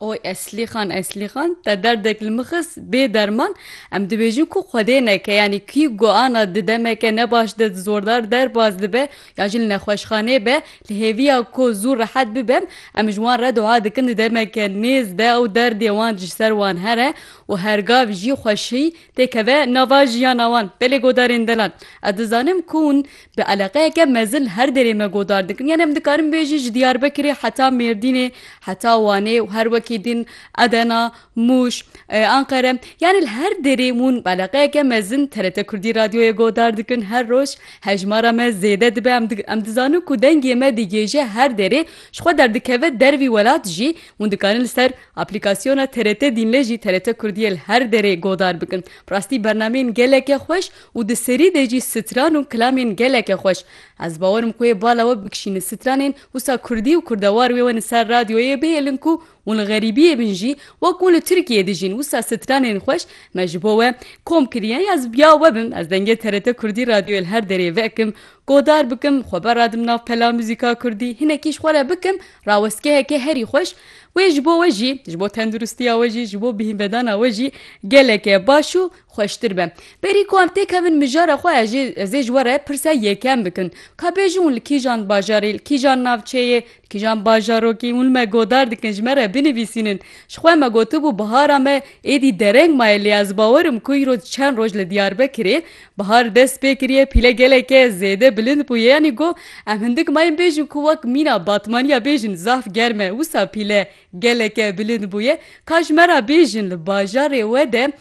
Oy Eslîxan Eslîxan te derdek li min xist bê derman em dibêjin ku xwedê neke yanî kî ku ana di demeke ne baş de zordar derbas dibe ya jî li nexweşxanê be li hêviya ku zû rehet bibem em ji wan re dua dikin di demeke nêz de ew derdê wan ji ser wan here û hergav jî xweşî têkeve nava jiyana wan. Belê godarên delal. Ez dizanim ku hûn bi eleqeyeke mezin her derê me godar dikin. Yanî em dikarin bêjî ji Diyarbekirê heta Mêrdînê, heta Wanê û her wekî din Edena, Mûş, Anqere. Yanî li her derê hûn bi eleqeyeke mezin TRT Kurdî Radyoyê godar dikin. Her roj hejmara me zêde dibe. Em em dizanin ku dengê me digihêje her derê. Ji xwe derdikeve dervî welat jî hûn dikarin li ser Aplîkasyona TRT Dînlê jî TRT Kurdiyê li her derê godar bikin. Bi rastî bernameyên geleke xweş û di serî de jî stran û kilamên geleke xweş. Ez bawer im ku wê bala we bikişînin stranên wisa kurdî û kurdewar wê wenin ser radyoyê bihêlin ku hûn li xerîbiyê bin jî wek hûn li Tirkiyeyê dijîn wisa stranên xweş me ji bo we kom kiriye ya ez ya we bim ez dengê TRT Kurdî radyoyê li her derê vekim godar bikim xwe beradim nav pela muzîka kurdî hinekî ji xwe re bikim rawestgeheke herî xweş Wê ji bo we jî, ji bo tenduristiya we jî, ji bo bihîmbedana we jî gelekê baş û xweştir be. Berî ku em têkevin mijara xwe ez jê ez ê ji we re pirsa yekem bikin. Ka bêjin hûn li kîjan bajarê, li kîjan navçeyê, li kîjan bajarokî hûn li me godar dikin ji me re binivîsînin. Ji xwe me gotibû bihara me êdî dereng maye lê ez bawer im ku îro çend roj li Diyarbekirê Bihar dest pê kiriye pîle geleke zêde bilind bûye yanî got, Em hindik mayên bêjin ku wek mîna batmaniya bêjin zaf germ e wisa pîle geleke bilind bûye. Ka ji me re bêjin li bajarê we de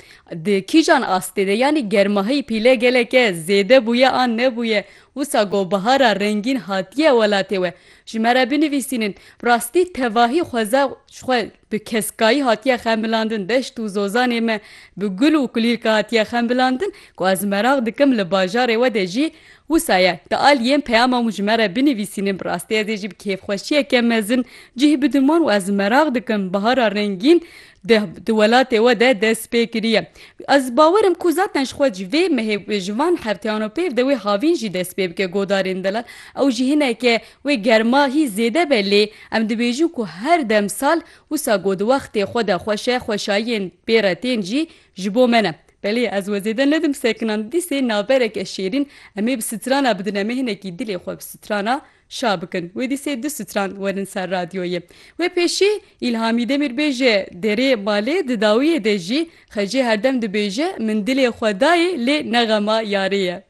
di kîjan astê de yanî germahî pîle geleke zêde bûye an nebûye. Wisa got, Bihara rengîn hatiye welatê we. Ji me re binivîsînin. Bi rastî tevahî xweza xwe. Bi keskayî hatiye xemilandin deşt û zozanê me bi gul û kulîrka hatiye xemilandin ku ez meraq dikim li bajarê we de jî wisa ye di aliyên peyama hûn ji me re binivîsînin bi rastî ez ê jî bi kêfxweşiyeke mezin cih bidiman û ez meraq dikim bihara rengîn di di welatê we de dest pê kiriye ez bawer im ku zaten ji xwe ji vê mehê ji van hefteyano pêv de wê havîn jî dest pê bike godarên delal ew jî hineke Wê germa hî zêde be lê em dibêjin ku her dem sal wisa ku di wextê xwe de xweş e xweşayiyên bê re tên jî ji bo me ne. Belê ez we zêde nedim sekinan dîsê navereke şêrîn em ê bi strana bidin em ê hinekî dilê xwe bi strana şa bikin. Wê dîsê du stran werin ser radyoyê. Wê pêşî Îlhamî Demîrbêje derê malê di dawiyê de jî xecê herdem dibêje min dilê xwe dayê lê nexema yarê ye.